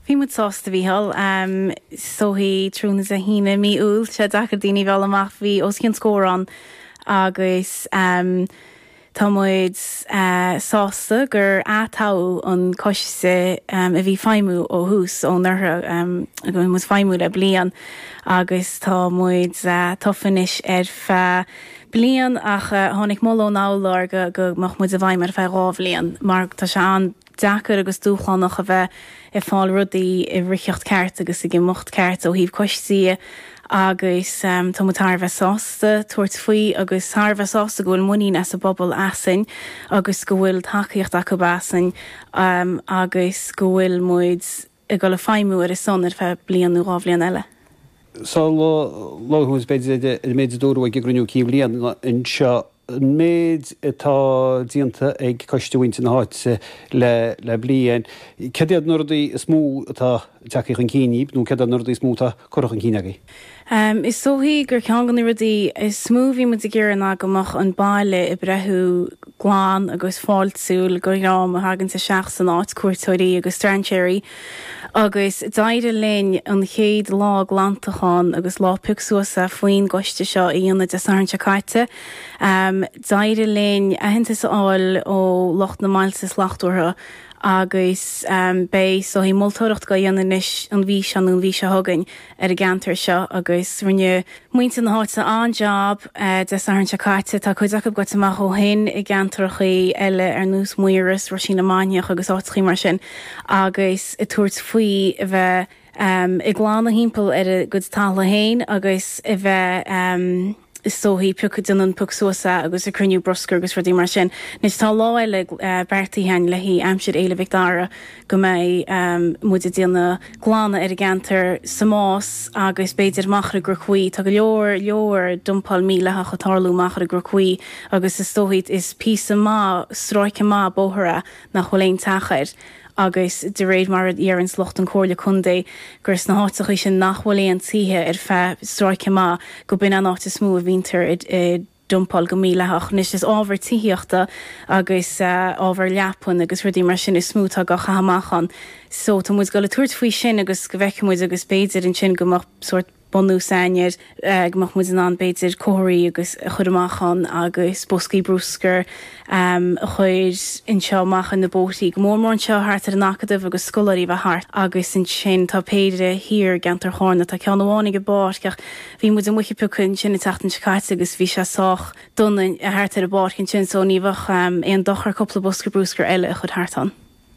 Bhí muid sásta, a Mhícheáil. Is dóichí tráthnóna Sathairn i mí Iúil, tá sé deacair daoine a mhealladh amach, bhí os cionn scór ann agus tá muid sásta gur ath-toghadh an coiste a bhí ag feidhmiú ó thús, ón uair go bhfuil muid ag feidhmiú le bliain agus tá muid tofa anois ar feadh bliain ach tháinig moladh ón urlár go go mbeadh muid i bhfeidhm ar feadh dhá bhliain mar tá sé an deacair agus dúshlánach a bheith ag fáil rudaí i riocht ceart agus ag imeacht ceart ó thaobh coistí de agus tá muid thar a bheith sásta tabhairt faoi agus thar a bheith sásta go bhfuil muinín ag an bpobal asainn agus go bhfuil tacaíocht acu asainn agus go bhfuil muid ag dul ag feidhmiú ar a son ar feadh bliain nó dhá bhliain eile. Sa lá atá inniu ann, b'fhéidir an méid a dúradh ag an gcruinniú cinn bhliana anseo an méid atá déanta ag Coiste Mhuintir na hÁite le bliain. Céard iad na rudaí is mó atá ag teacht chun cinn, nó céard iad na rudaí is mó atá. curtha chun cinn agaibh. Is dóichí gur ceann de na rudaí is mó a bhí muid ag iarraidh ná go mbeadh an baile ag breathú glan agus fáiltiúil do dhream a thaganns isteach san áit, cuairteoirí agus strainséirí, agus d'éirigh linn an chéad lá glantacháin agus lá pioc suas faoin gcoiste seo a dhéanamh Dé Sathairn seo caite. D'éirigh linn aitheantas a fháil ó lucht na mbailte slachtmhara agus beidh is dóichí moltóireacht á dhéanamh anois an mhí seo nó an mhí seo chugainn ar an gceantar seo agus rinne muintir na háite an-jab Dé Sathairn seo caite. Tá cuid acu gaibhte amach ó shin i gceantrachaí eile ar nós Maíros, Roisín na Mainiach agus áiteachaí mar sin agus ag tabhairt faoi a bheith ag glanadh thimpeall ar a gcuid talamh féin agus a bheith is dóichí, ag déanamh pioc suas agus ag cruinniú bruscair agus rudaí mar sin. Anois tá lá eile beartaithe againn le haghaidh aimsir Fhéile Mhic Dara go mbeidh muid ag déanamh glanadh ar an gceantar sa Más agus b'fhéidir amach ar an gCnoc Buí, tá go leor, leor dumpáil mídhleathach ag tarlú amach ar an gCnoc Buí agus is dóichí, is píosa maith, stráice maith bóthair é nach bhfuil aon teach air. agus de réir mar a deireanns lucht an Chomhairle Contae gur sna háiteachaí sin nach bhfuil aon tithe ar feadh stráice maith go b'in an áit is mó a bhínntear ag dumpáil go mídhleathach. Anois is ábhar tithíochta agus ábhar leapan agus rudaí mar sin is mó atá á chaitheamh amach ann so tá muid ag dul ag tabhairt faoi sin agus go bhfeicfidh muid agus b'fhéidir ansin go mbeadh sórt bunús againn, go mbeadh muid in ann, b'fhéidir, comharthaí agus a chur amach ann agus boscaí bruscair a chur anseo amach ar na bóithrí, go mór mór anseo thart ar an Acadamh agus scoláirí a bheith thart agus ansin tá péire thiar i gceantar Charna, tá ceann amháin ag an bpáirc ach bhí muid amuigh ag piocadh ansin an tseachtain seo caite agus bhí sé sách dona thart ar an bpáirc ansin so ní bheadh aon dochar cúpla bosca bruscair eile a chur thart ann.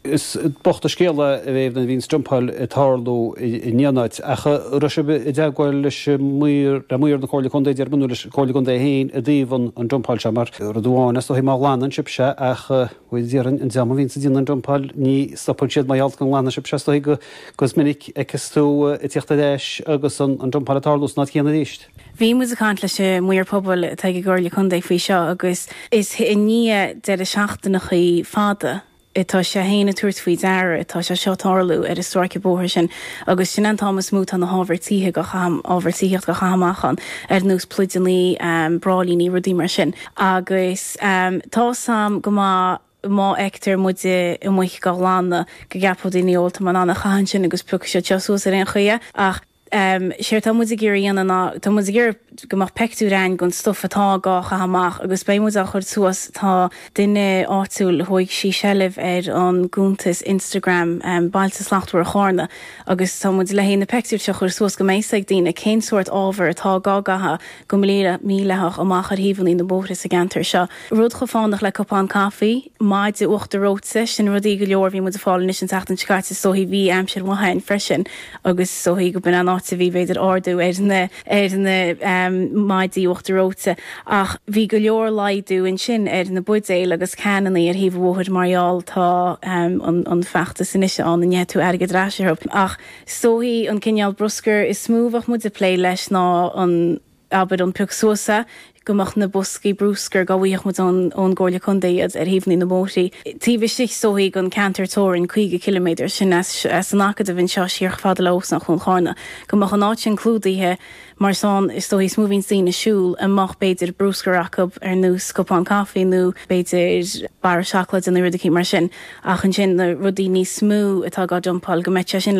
Is bocht an scéal é nuair a bhíonns dumpáil ag tarlú in aon áit, ach raibh sibh i dteagmháil leis maoir, le maoir na Comhairle Contae déarfainn nó, leis an Chomhairle Contae féin i dtaobh an dumpáil seo, mar rud amháin is dóichí má ghlanann sibh sé, ach faoi dheireadh an dream a bhíonns ag déanamh an dumpáil ní stopann siad, mar gheall go nglanann sibh é is dóichí agus is minic a fheiceas tú ag tíocht ar ais agus an dumpáil ag tarlú san áit chéanna arís. Bhí muid ag caint leis an Maor Pobail atá ag an gComhairle Contae faoi seo agus is i ndiaidh deireadh seachtainachaí fada atá sé féin ag tabhairt faoi deara atá sé seo ag tarlú ar an stráice bóthair sin agus sin é an t-am is mó atá na hábhair tithíocht á chaitheamh amach ann ar nós pluideannaí, bráillíní, rudaí mar sin agus tá 's a'm go maith má fheictear muid amuigh á ghlanadh go gceapfadh daoine 'Ó tá mé in ann é a chaitheamh ansin agus piocfaidh siad seo suas ar aon chaoi é' ach Séard tá muid ag iarraidh a dhéanamh ná, tá muid ag iarraidh go mbeadh peictiúir againn den stuif atá dhá chaitheamh amach agus beidh muid á chur suas, tá duine áitiúil, thóig sí seilbh ar an gcuntas Instagram Bailte Slachtmhara Chárna agus tá muid le haghaidh na peictiúir seo a chur suas go mbeidh a fhios ag daoine cén sórt ábhar atá dhá gcaitheamh go mídhleathach amach ar thaobhannaí na mbóithre sa gceantar seo. Rud chomh fánach le cupán caife, maide uachtar reoite, sin rudaí go leor a bhí muid ag fáil anois an tseachtain seo caite is dóigh, bhí aimsir mhaith ann freisin agus is dóigh gurb in an áit a bhí b'fhéidir ardú ar na ar na maidí uachtar reoite ach bhí go leor laghdú ansin ar na buidéil agus cannaí ar thaobh an bhóthair mar gheall tá an feachtas anois ann a bhfaighidh tú airgead ar ais orthu ach Is dóichí an cineál bruscair is mó a bheadh muid ag plé leis ná an, abair, an pioc suas é, go mbeadh na boscaí bruscair, dá bhfaigheadh muid ón gComhairle Contae iad, ar thaobhannaí na mbóithrí, taobh istigh is dóichí den ceantar teorainn 50 ciliméadar sin as an Acadamh anseo siar fada le Óstán Chuan Charna, go mbeadh an áit sin clúdaithe mar is ann is dóichí is mó a bhíonns daoine ag siúl a mbeadh, b'fhéidir, bruscar acu ar nós cupán caife nó, b'fhéidir, barra seacláide nó rud eicínt mar sin. Ach ansin na rudaí níos mó atá dhá dumpáil, go mbeadh sé sin le.